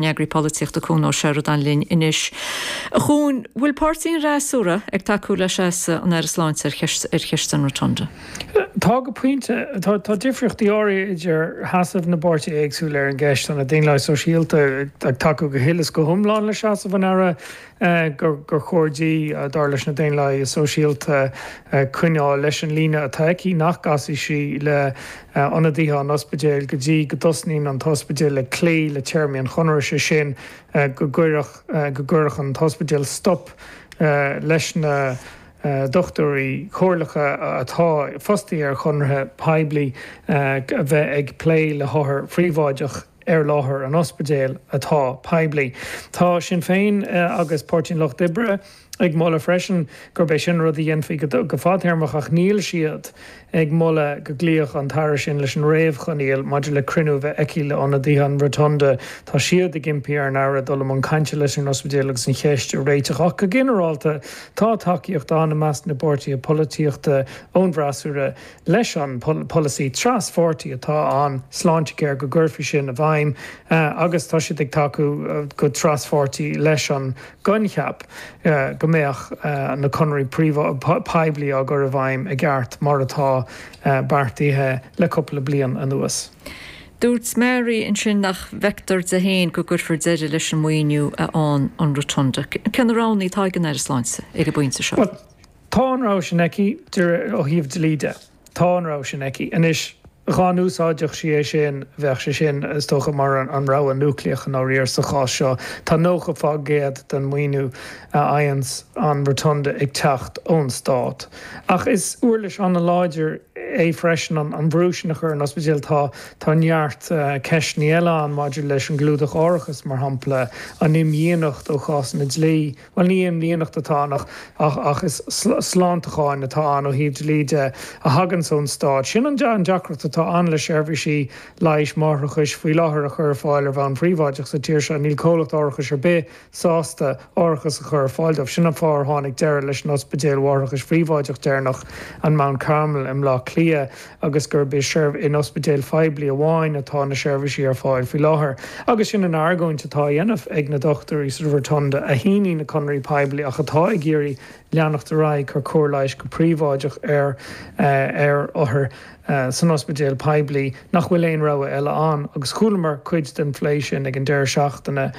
nEagraí Polaitíochta Cuan Ó Seireadáin linn anois. A Chuain, bhfuil páirtithe an fhreasúra ag tacú le seasamh an Aire Sláinte ar cheist an Rotunda? Tá go pointe. Tá difríochtaí áirithe idir sheasamh na bpáirtithe éagsúla ar an gceist. Tá na Daonlathaigh Sóisialta ag tacú go huile is go hiomlán le seasamh an Aire gur chóir di, dar leis na Daonlathaigh Sóisialta, coinneáil leis an líne atá aici nach gcasfaidh sí le hionadaithe an ospidéil go dtí go dtosnaíonn an t-ospidéal ag cloí le téarmaí an chonartha, sé sin, go go gcuirfeadh an t-ospidéal stop leis na dochtúirí comhairleacha atá fostaithe ar chonarthaí poiblí a bheith ag plé le hothair phríobháideacha. ar láthair an ospidéil atá poiblí. Tá Sinn Féin agus Páirtí an Lucht Oibre ag moladh freisin gurb é sin an rud a dhéanfaí go fadtéarmach ach níl siad ag moladh go gcloífeadh an tAire sin leis an réamhchoinníoll maidir le cruinniú a bheith aici le hionadaithe an Rotunda. Tá siad ag impí ar an Aire dul i mbun cainte leis an ospidéal agus an cheist a réiteach ach go ginearálta tá tacaíocht ann i measc na bpáirtithe polaitíochta ón bhfreasúra leis an polasaí traspháirtí atá ann, Sláintecare, go gcuirfí sin i bhfeidhm agus tá siad ag tacú go traspháirtí leis an gcoincheap go mbeadh na conarthaí poiblí á gcur i bhfeidhm i gceart mar atá beartaithe le cúpla bliain anuas. Dúirt Mary ansin nach bhfeictear di féin go gcuirfear deireadh leis an maoiniú a fhaigheann an Rotunda. Cén na roghanna atá ag an Aire Sláinte ag an bpointe seo? Tá an rogha sin aici de réir. ó thaobh dlí de, tá an rogha sin aici. Anois, dhá n-úsáidfeadh sí é sin, bheadh sé sin, is dócha, mar an rogha núicléach i ndáiríre sa chás seo. Tá nócha fá gcéad den mhaoiniú a fhaigheanns an Rotunda ag teacht ón Stát. Ach is uirlis an-láidir é freisin an brú sin a chur ar an ospidéal. Tá tá neart ceisteanna eile ann maidir leis an gclúdach árachais, mar shampla, an imdhíonacht ó chásanna dlí, Bhuel, ní imdhíonacht atá ann ach is slánaíocht atá ann ó thaobh dlí de a thaganns ón Stát. Sin an deacracht atá ann le seirbhísí leighis máithreachais faoi láthair a chur ar fáil ar bhonn phríobháideach sa tír seo, níl comhlacht árachais ar bith sásta árachas a chur ar fáil dóibh. Sin an fáth ar tháinig deireadh leis an ospidéal mháithreachais phríobháideach deireanach, an Mount Carmel i mBleá Cliath. agus gurb in ospidéil phoiblí amháin atá na seirbhísí ar fáil faoi láthair, agus sin an argóint atá á dhéanamh ag na dochtúirí sa Rotunda a shínigh na conarthaí poiblí ach atá ag iarraidh leanacht ar aghaidh ag cur cóir leighis go príobháideach ar ar othair san ospidéal poiblí nach bhfuil aon rogha eile ann agus chualamar cuid den phlé sin ag an deireadh seachtaine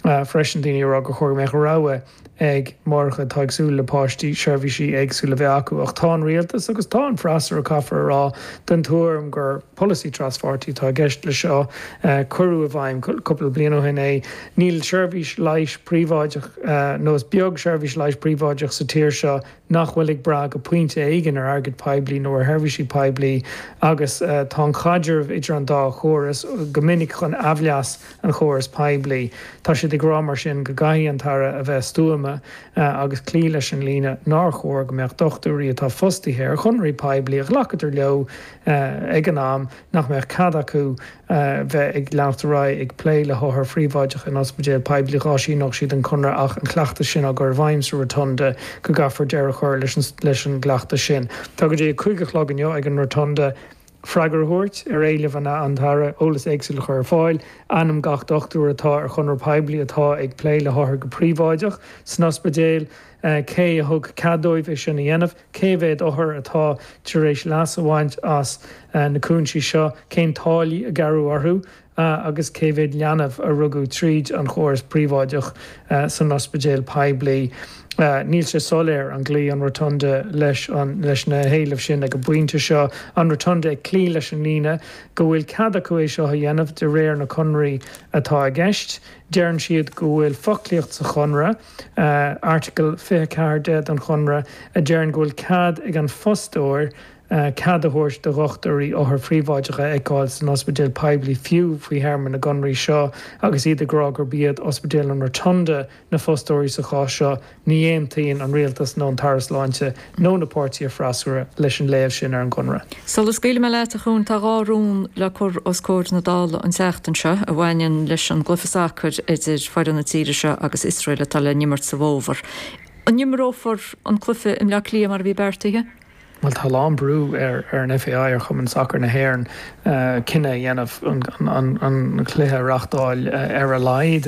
freisin, daoine ag rá gur chóir go mbeadh rogha. ag máithreacha atá ag súil le páistí, seirbhísí éagsúla a bheith acu, ach tá an Rialtas agus tá an freasúra, caithfear a rá, den tuairim gur polasaí traspháirtí atá i gceist leis seo. Cuireadh i bhfeidhm cúpla bliain ó shin é. Níl seirbhís leighis phríobháideach nó is beag seirbhís leighis phríobháideach sa tír seo. nach bhfuil ag brath go pointe éigin ar airgead poiblí nó ar sheirbhísí poiblí agus tá an caidreamh idir an dá chóras go minic chun aimhleas an chórais poiblí. Tá siad ag rá mar sin go gcaithfidh an tAire a bheith stuama agus cloí leis an líne nár chóir go mbeadh dochtúirí atá fostaithe ar chonarthaí poiblí a ghlacadar leo ag an am nach mbeadh cead acu a bheith ag leanacht ar aghaidh ag plé le hothair phríobháideacha in ospidéil poiblí dá síneoidís an conradh ach an cleachtas sin á gcur i bhfeidhm sa Rotunda go gcaithfear deireadh a chur leis an gcleachtas sin. Tá go dtí a cúig a chlog inniu ag an Rotunda freagra a thabhairt ar éilimh an an tAire, eolas éagsúil a chur ar fáil, ainm gach dochtúir atá ar chonradh poiblí atá ag plé le hothair go príobháideach san ospidéal, cé a thug cead dóibh é sin a dhéanamh. cé mhéad othar atá tar éis leas a bhaint as na cúinsí seo, cén táillí a gearradh orthu agus cé mhéad leanbh a rugadh tríd an chóras príobháideach san ospidéal poiblí. Níl sé soiléir an gcloífidh an Rotunda leis na héilimh sin ag an bpointe seo, an Rotunda ag cloí leis an líne go bhfuil cead acu é seo a dhéanamh de réir na conraí atá i gceist. Deireann siad go bhfuil foclaíocht sa chonradh, Airteagal 24 de don Chonradh a deireann go bhfuil cead ag an fostóir cead a thabhairt do dhochtúirí othair phríobháideacha a fheiceáil san ospidéal poiblí fiú faoi théarmaí na gconraí seo agus iad ag rá gurb iad Ospidéal an Rotunda na fostóirí sa chás seo. Ní aontaíonn an Rialtas nó an tAire Sláinte nó na páirtithe freasúra leis an léamh sin ar an gConradh. Sula scaoilfidh mé leat, a Chuain, tá dhá rún le cur os comhair na Dála an tseachtain seo a bhaineann leis an gcluiche sacair idir foireann na tíre seo agus Iosrael atá le n-imirt sa bhfómhar. An n-imreofar an cluiche i mBleá Cliath mar a bhí beartaithe? Bhuel, tá a lán brú ar an FAI, ar Chumann Sacair na hÉireann, cinneadh a dhéanamh an cluiche a reáchtáil ar a laghad.